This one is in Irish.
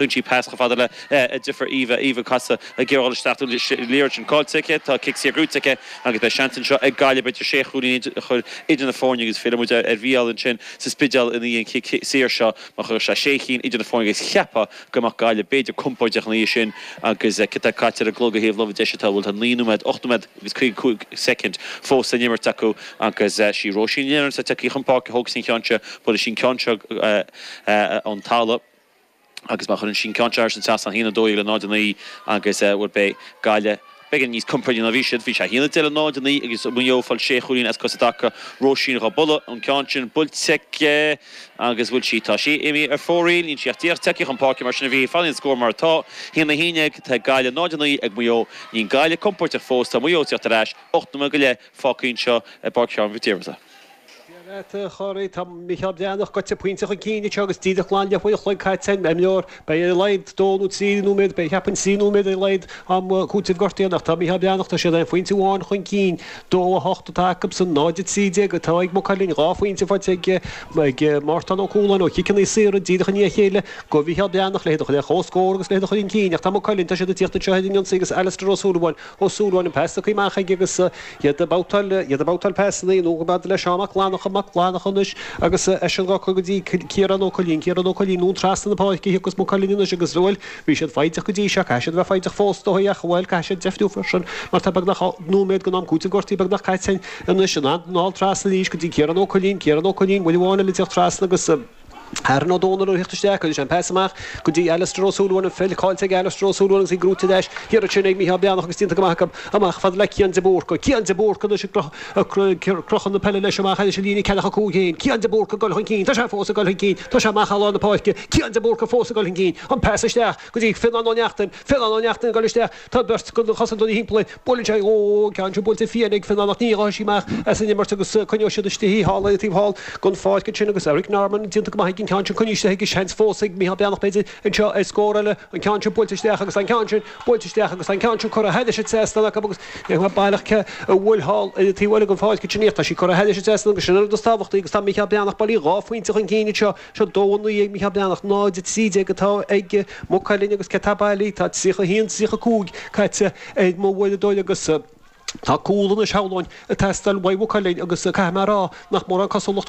Tugann sí pas chomh fada le deirfiúr Eva. Eva casadh ag iarraidh goil isteach dúinn is liathróid sin caillte aici. Tá cic saor buaite aici agus beidh seans anseo ag Gaillimh idir sé chúilín a chur idir na foirne agus fillfidh muid ar Mhícheál ansin sa Spidéal ina dhiaidh an chic saor seo mar chuirfeadh sé sé chinn idir na foirne agus cheapfá go mbeadh Gaillimh b'fhéidir compóirdeach ina dhiaidh sin agus céard atá caite ar an gclog ar thaobh na láimhe deise tá bhuel tá naoi nóiméad, ocht nóiméad agus caoga cúig soicind fós le n-imirt acu agus sí Róisín Nic Éireann atá tagtha chun páirce tógfaidh sí an ceann seo, buailfidh sí an ceann seo ón talamh. agus má chuireann sí an ceann sin thar an trasnán, 1 12 le 0 9, agus bhuel beidh Gaillimh, beidh siad níos compordaí ná bhí siad, bhí sé 1 10 le 0 9 agus Maigh Eo ag fáil 6 chúilín as cosa i dtaca, Róisín dhá bualadh, an ceann sin, buailte aici agus bhuel sí, tá sí imithe ar fóraoil, níl sí ach díreach tagtha chun páirce mar sin a bhí, fanfaidh an scór mar atá, 1 11 atá ag Gaillimh 0 9 ag Maigh Eo, níl Gaillimh compóirteach fós, tá Maigh Eo ag teacht ar ais, 8 nóiméad go leith fágtha anseo i bPáirc Sheáin Mhic Diarmada. Dia leat, a Chorey. Tá Micheál Breathnach goite pointe chun cinn anseo agus díreach glan leathuair an chloig caite den imirt. Beidh ar a laghad dó nó trí nóiméad, bhuel cheapfainn trí nóiméad ar a laghad am cúitimh gortaithe ach tá Micheál Breathnach, tá siad aon phointe amháin chun cinn. 2:08 atá acusan 0:13 atá ag Maigh Cuilinn. Dhá phointe faighte ag ag Mártán Ó Cualáin ó chiceanna saora díreach i ndiaidh a chéile go Mhicheál Breathnach, le hiad a chur ar comhscór agus le hiad a chur chun cinn ach tá Maigh Cuilinn, tá siad ag tíocht anseo ar an ionsaí agus Alastair Ó Súilleabháin, Ó Súilleabháin an pas curtha amach aige agus iad ag babhtáil, iad ag babhtáil pasanna anonn fhad le Seán Mac Fhlannacha, Mac Fhlannacha anois, agus eisean dhá cur go dtí Ciarán Ó Coilín, Ciarán Ó Coilín anonn trasna na páirce thiocfas Maigh Cuilinn anois agus bhuel, bhí siad foighdeach go dtí seo, caithfidh siad a bheith foighdeach fós ar ndóigh ach bhuel, caithfidh siad deifniú freisin mar tá beagnach an nóiméad den am cúitimh gortaithe beagnach caite anois, iad ag dul trasna arís go dtí Ciarán Ó Coilín, Ciarán Ó Coilín, uair amháin eile a d'fhéach trasna agus. Aaron Ó Dónaill ag tíocht isteach agus an pas amach go dtí Alastair Ó Súilleabháin, an pheil caillte ag Alastair Ó Súilleabháin agus í gnóite ar ais thiar ansin ag Micheál Breathnach agus déanta go maith acu amach fad le Cian de Búrca. Cian de Búrca anois ag crochadh na peile leis amach thar an líne ceathracha 5 féin. Cian de Búrca ag dul chun cinn. Tá sé fós ag dul chun cinn. Tá sé amach thar lár na páirce. Cian de Búrca fós ag dul chun cinn. An pas isteach go dtí Fionnán Ó Neachtain. Fionnán Ó Neachtain ag dul isteach. Tá beirt de na cosantóirí timpeall air. Buaileann sé dhó an ceann sin. Buailte fiáin ag Fionán ach ní raghaidh sí amach as an imirt agus coinneoidh siad istigh í. Thall ar an taobh thall den pháirc ansin agus Eric Norman déanta go maith aige an ceann sin a choinneáil istigh. Seans fós ag Micheál Breathnach b'fhéidir anseo ar scór eile. An ceann sin buailte isteach agus an ceann sin buailte isteach agus an ceann sin curtha thar an trasnán acu agus Baile Átha Cliath uaidh thall ar an taobh eile den pháirc ansin. Tá sí curtha thar an trasnán agus sin an rud is tábhachtaí agus tá Micheál Breathnach bailithe dhá phointe chun cinn anseo. Seo 2:09 ag Mícheál Breathnach, 0:13 atá ag Maigh Cuilinn agus céard atá bailithe, tá 31, 35 caite ar m'uaireadóir agus tá cúl anois, shamhlóinn, ag teastáil uaidh Mhaigh Cuilinn agus caithfidh mé a rá nach mórán cosúlacht